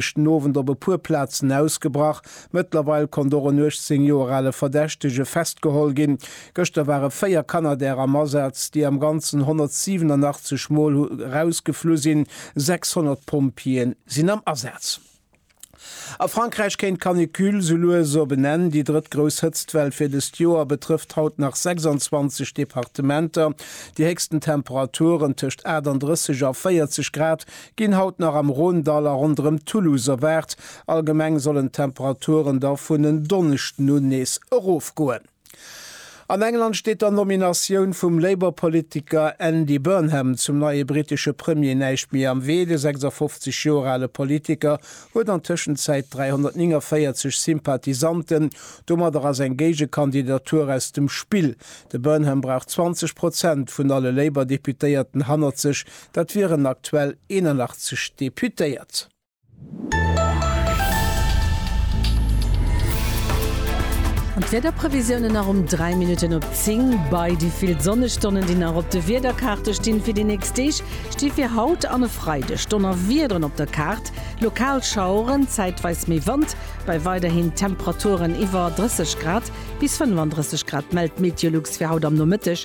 Ass den Owend op e puer Plazen ausgebrach. Mëttlerweil konnt och en 18 Joer ale Verdächtege festgeholl ginn. Gëschter ware 4 Canadair am Asaz, déi am Ganzen 187 Mol hu rausgeflu sinn. 600 Pompjeeë sinn am Asaz. A Frankräich kéint d'Canicule sou lues op en Enn. Déi drëtt grouss Hëtztwell fir dëst Joer betrëfft haut nach 26 Departementer. Déi héchsten Temperaturen, tëscht 38 a 40 Grad, ginn haut nach am Rhône-Dall a ronderëm Toulouse erwaart. Allgemeng sollen d'Temperaturen da vun en Donneschden un nees erofgoen. An England steet der Nominatioun vum Labour-Politiker Andy Burnham zum neie brittesche Premier näischt méi am Wee. De 56 Joer ale Politiker huet an Tëschenzäit 349 Sympathisanten, domadder ass eng Géigekandidatur aus dem Spill. De Burnham brauch 20 Prozent vun alle Labour-Deputéierten hannert sech, Dat wieren aktuell 81 Deputéiert. An d'Wiederprevisiounen nach um 3 Minutten op 10 bei. Déi vill Sonnestonnen, déi nach op de Wiederkaarte stinn fir déi nächst Deeg, sti fir haut an e Freideg Donnerwiederen op der Kaart, lokal Schaueren, zäitweis méi Wand bei weiderhin Temperaturen iwwer 30 Grad bis 35 Grad, mellt d'Meteolux fir haut am Nomëtteg.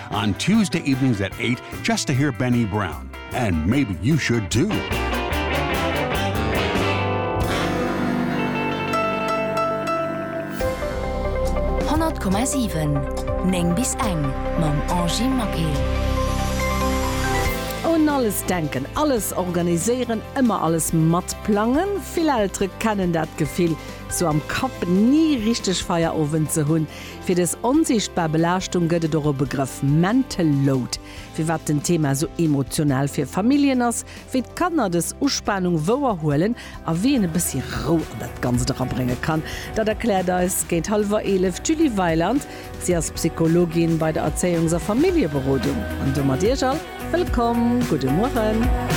On Tuesday evenings at eight just to hear Benny Brown and maybe you should too. Neng bis eng mam Angie Maquet. Un alles denken, alles organiséieren, ëmmer alles matplangen. Vill Eltere kennen dat Gefill, sou am Kapp ni richteg Feierowend ze hunn. Fir des onsiichtbar Belaaschtung gëtt et och e Begrëff, Mental Load. Firwat den Thema esou emotional fir Familljen ass, wéi d'Kanner des Uspanung wouer huelen a wéi een e bëssi Rou an dat Ganzt erabrénge kann, dat erkläert eis géint hallwer 11 d'Julie Weiland. Si ass Psychologin bei der Erzéiungs a Familljeberodung an domat Iech all wëllkomm. Gudde Mueren.